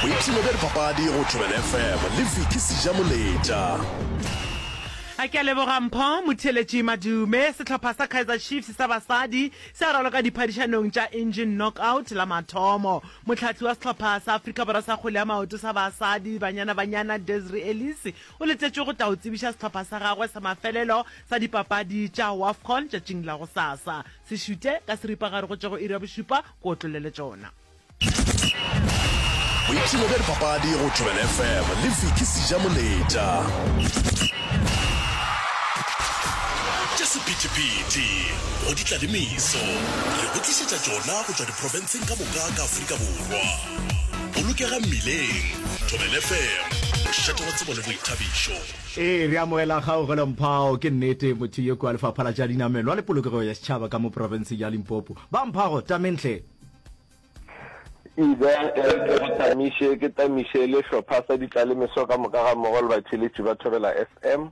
boipshino bja dipapadi go thobela fm le viki seja moletša a ke a leboga mpho motheletši madume sehlopha sa kaizer chiefs sa basadi se a raloka diphadišanong tša engine knockout la mathomo motlhatli wa sehlopha sa afrika borwa sa kgole ya maoto sa basadi banyana banyana desri ellis o letetšwe go tla o tsebiša sehlopha sa gagwe sa mafelelo sa dipapadi tša wafcon tšatšing la go sasa se šute ka seripagare go tšwa go iri ya bošupa ko otlole le tšona boipshino bja dipapadi go thobela fm le viki sija moletša tša sephetephete go di tla le meso re go tlišetša tšona go tšwa diprofenseng ka moka ka aforika borwa bolokega mmileng thobela fm mošate wa tsebo le boithabišo ee re amogela kgaogelo mphao ke nnete motho yo kua lefapha la tša dinamelwa le polokego ya setšhaba ka mo profenseng ya limpopo Ba mphago tameng hle. Ida e re ke go tamiše, ke tamiše le hlopha sa ditlalemeso ka moka ga mmogo le batheeletši ba Thobela FM.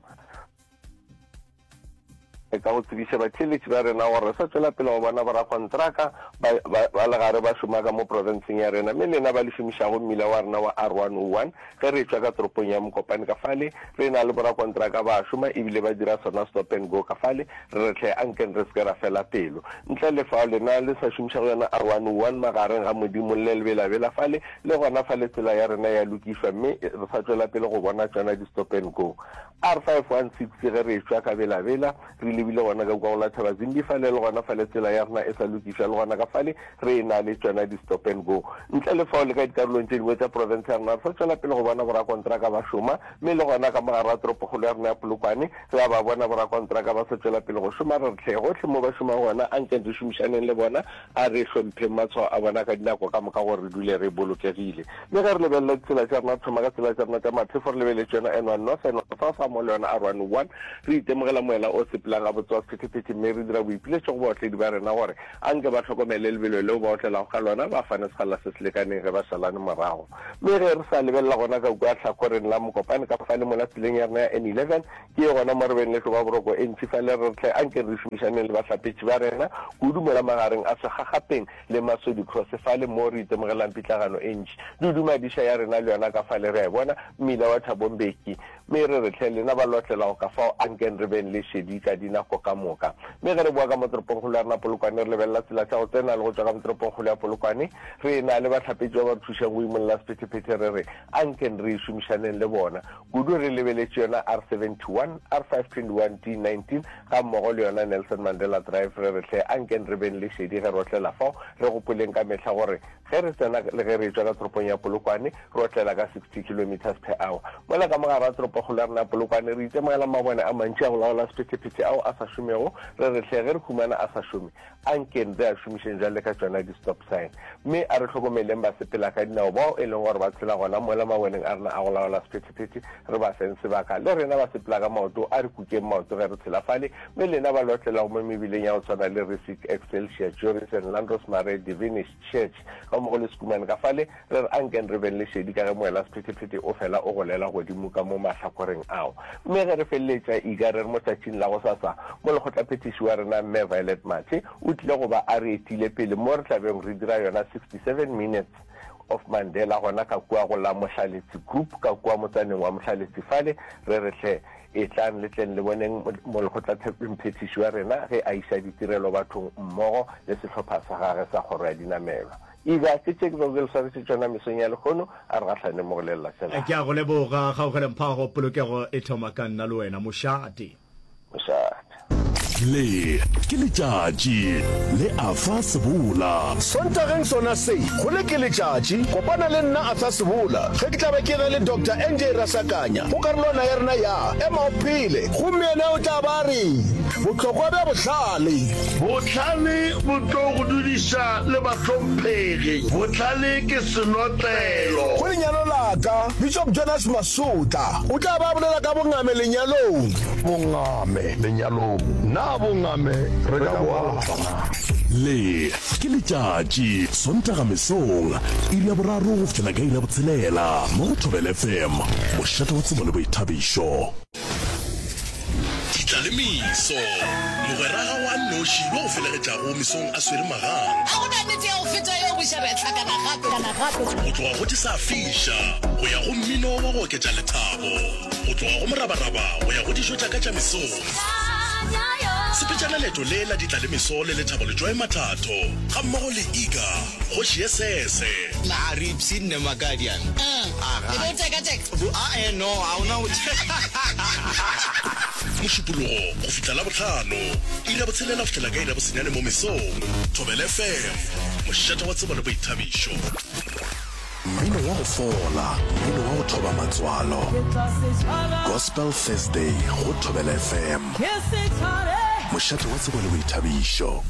Re ka go tsebiša batheeletši ba rena gore re sa tšwela pele go bona borakontraka ba, ba, ba legare ba šoma ka mo profenseng ya rena, mme lena ba le šomišago mmila wa rena wa R101. Ge re etšwa ka toropong ya Mokopane ka fale, re e na le borakontraka ba šoma e bile ba dira sona stop and go ka fale, re re hle a nkeng re se ke ra fela pelo. Ntle le fao, lena le sa šomišago yona R101 magareng ga Modimo le lebelabela fale, le gona fale tsela ya rena ya lokišwa mme re sa tšwela pele go bona tšona di stop and go. R516 Ge re etšwa ka Bela-Bela, re lebile gona ka kua go la Thabazimbi fale, le gona fale tsela ya rena e sa lokišwa, le gona ka fale re e-na le tšona di-stop and go. Ntle le fao, le ka dikarolong tše dingwe tša profense ya rena re sa tšwela pele go bona borakontraka ba šoma, mme le gona ka mo gare ga toropokgolo ya rena ya Polokwane, re a ba bona borakontraka ba sa tšwela pele go šoma, re re tlhe gohle moo ba šomago gona, anke re šomišaneng le bona. A re hlompheng matshwao a bona ka dinako ka moka gore re dule re bolokegile. Le ge re lebelela ditsela tša rena, thoma ka tsela tša rena tša maphefo, re lebeletse yona N1 North, N1 South gammogo le yona R101. Re itemogela moela o sepelang gabotse wa sephethephethe mme re dira boipiletšo go baotledi ba rena gore a nke ba hlokomele lebelo leo ba otlelago ka lona, ba fane sekgalala se se lekaneng ge ba šalane morago. Mme ge re sa lebelela gona ka kua hlakoreng la Mokopane ka fale mola tseleng ya rena ya N11, Ke gona mo re beng le tlo ba boroko e ntši fa le re re tle, anke re šomišaneng le bahlapetši ba rena kudu mola magareng a segagapeng le Masodi Cross fale moo re itemogelang pitlagano e ntši. Dudu Madiša ya rena le yona ka fale re a e bona, mmila wa Thabo Mbeki. Me re re tle, lena ba lotlelago ka fao, ankeng re beng le šedi ka dinako ka moka. Me ge re boa ka mo toropongkgolo ya rena Polokwane re lebelela tsela tša go tsena le go tšwa ka mo toropongkgolo ya Polokwane, re e na le bahlapetši ba ba re thušang go imolla sephetephete re re, ankeng re šomišaneng le bona. Kudu re lebeletše yona R71, R521-D19 gammogo le yona Nelson Mandela Drive re re hle ankeng re beng le šedi ge re otlela fao, re gopoleng ka mehla gore ge re tsena le ge re etšwa ka toropong ya Polokwane re otlela ka 60 kilometres per hour. Mola ka mo gare ga toropokgolo ya rena ya Polokwane re itemogela mabone a mantši a go laola sephetephete ao a sa šomego, re re hle ge re humana a sa šome, A nkeng re a šomišeng bjale ka tšona di-stop sign, mme a re hlokomeleng basepelakadinao bao e leng gore ba tshela gona mola maboneng a rena a go laola sephethephethe, re ba feng sebaka. Le rena ba sepela ka maoto, a re kukeng maoto ge re tshilafale, mme lena ba lotlelago mo mebileng ya go tshwana le Risic, Excelsior, Joris and Landros Mare, Divinish, Šetše, ga mmogo le sekumane ka fale, re re, Ankeng re beng le šedi ka ge moelasephetephete o fela o golela godimo ka mo mahlakoreng ao. Mme ge re feleletša ika re re motšatšing la gosasa, Molekgotlaphethiši wa rena, Mme Violet Mathe, o tlile go ba a re etile pele mo re tla bego re dira yona 67 Minutes of Mandela gona ka kua go la Mohlaletsi Group ka kua motsaneng wa Mohlaletsi fale, re re, Hle, Etlang le tleng le boneng Molekgotlathekgwemphethiši wa rena ge a iša ditirelo bathong mmogo le sehlopha sa gagwe sa Kgoro ya Dinamelwa. Ega ke tše bego re swanetše tšona mesong ya lehono, a re gahlane mo go lelela tsela. Ke a go leboga, Kgaugelempago. Polokego e thoma ka nna le wena, mošate. Mošate. Le ke letšatši le Arthur Sebola. Sontageng sona se, go Le ke letšatši, kopana le nna Arthur Sebola ge ke tla be ke na le Doctor NJ Rasakanya go karolwana ya rena ya Ema o Phele. Gomme yena o tla ba a re, Bohlokwa bja bohlale. Bohlale bo tlo go dudiša le bahlomphegi. Bohlale ke senotlelo. Go lenyalo la ka, Bishop Jonas Masotla o tla ba a bolela ka bongame lenyalong. Ame lenyalong. Na bongame re ka bo alafa na? Le ke letšatši, Sontaga mesong, iri ya boraro go fihlela ka iri ya botshelela, mo go Thobela FM, mošate wa tsebo le boithabišo. Ditlaleimiso, Mogweraga wa nnoši yo o felegetšago mesong a swere magang. A go na nete ya go feta yeo, boša bja hlakana gape. Go tloga go di sa fiša go ya go mmino wa go oketša lethabo. Go tloga go morabaraba go ya go dijo tša ka tša mesong. Sepetšana leeto le la ditla le meso le lethabo Letšwae Mathatho ga mmogo le Iga, kgoši ye sese. Na Ripsy nne Makadian? Aha. E be o teka teka? Bo a eh no ha ona go teka. Mošupologo go fihla Labohlano, iri ya botshelela go fihlela ka iri ya bosenyane mo mesong. Thobela FM, mošate wa tsebo le boithabišo. Mmino wa go fola, mmino wa go thoba matswalo. Gospel Thursday go Thobela FM. Mošate wa tsebo le boithabišo.